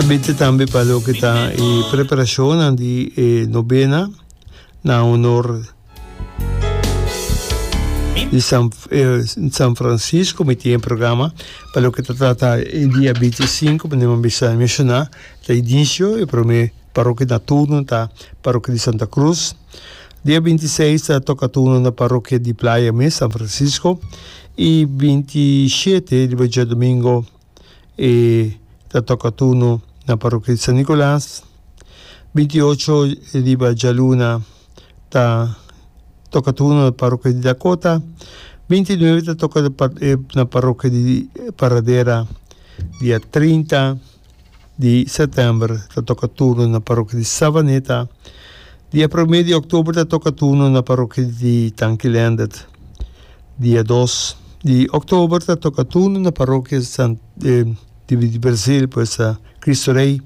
Bibite tambe pa loke ta e preparacionnan di e novena na honor di San, eh, San Francisco, mi tiene programa pa loke ta trata e dia 25, como nima bisa menciona, ta inicio e prome parroquia na turno ta parroquia di Santa Cruz. Dia 26 ta toca turno na parroquia di Playa mes, San Francisco. Y 27 riba dia domingo e ta toka turno na Parokia di San Nicolas. Binti ocho riba djaluna ta toka turno na Parokia di Dakota. Binti nuebe ta toka na Parokia di Paradera, dia trinta. di sètèmber ta toka turno na parokia di Savaneta, di e promé di òktober ta toka turno na parokia di Tankilendet, di e dos di òktober ta toka turno na parokia di Brazil, pues a Kristu Rei,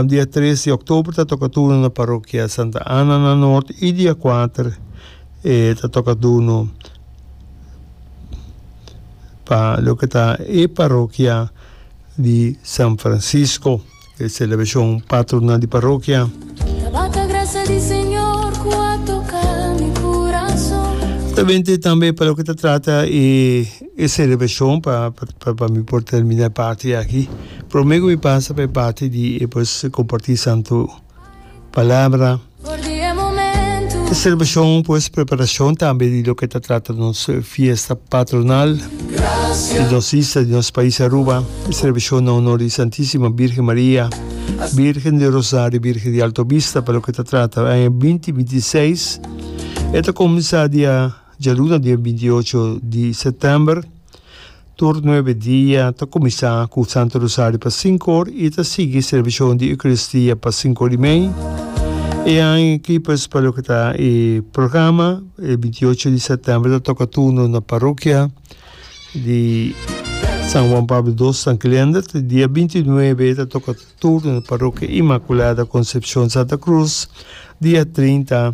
di e tres di òktober ta toka turno na parokia Santa Ana na Nort i di e kuater ta toka turno pa loke ta e parokia di San Francisco, e celebracion patronal di parokia. Tabende tambe pa loke ta trata e e celebracion pa pa mi por termina e parti aki, prome cu mi pasa pa e parti di e pues comparti Santo. Palabra. E selebracion por es preparacion tambe di loke ta trata nos fiesta patronal di nos isla, di nos pais Aruba, e selebracion na honor di Santisima Birgen Maria, Birgen di Rosario, Birgen di Alto Bista, pa loke ta trata e aña binti binti i seis. E ta cuminsa dia djaluna, dia binti i ocho di september. Tur nuebe dia ta kuminsá ku Santu Rosario pa sinku or i ta sigui servishonan di Eukaristia pa sinku or i mei. E aña kipes pa loke ta e programa, e binti ocho di sèptèmber ta toka turno na parokia di San Juan Pablo Dos San Glender, te dia binti nuebe ta toka turno na parokia Inmakulada Konsepshon Santa Krus, dia trinta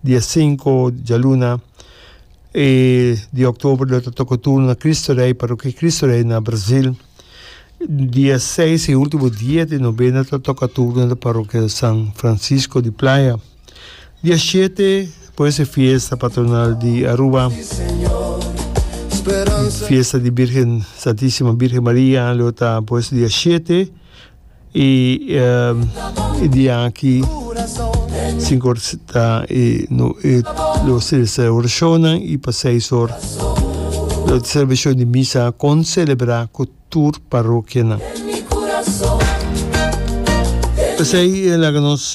di e sinku djaluna di oktober lo ta toka turno na Kristu Rei, Parokia Kristu Rei na Brazil. Di e seis i ultimo dia di nobena ta toka turno na Parokia San Francisco di Playa. Di e shete por e fiesta patronal di Aruba, fiesta di Birgen Santisima Birgen Maria lo ta pues di e shete. I di aki sinku or ta e lo selebrá e orashonnan i pa seis or lo selebrashon di misa a konselebrá ku tur parokianan. P'esei laga nos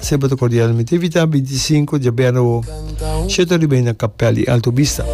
Sempra ta cordial mi te invita binti y sinku dje bernabo shete riba i na kapel di Alto Bista.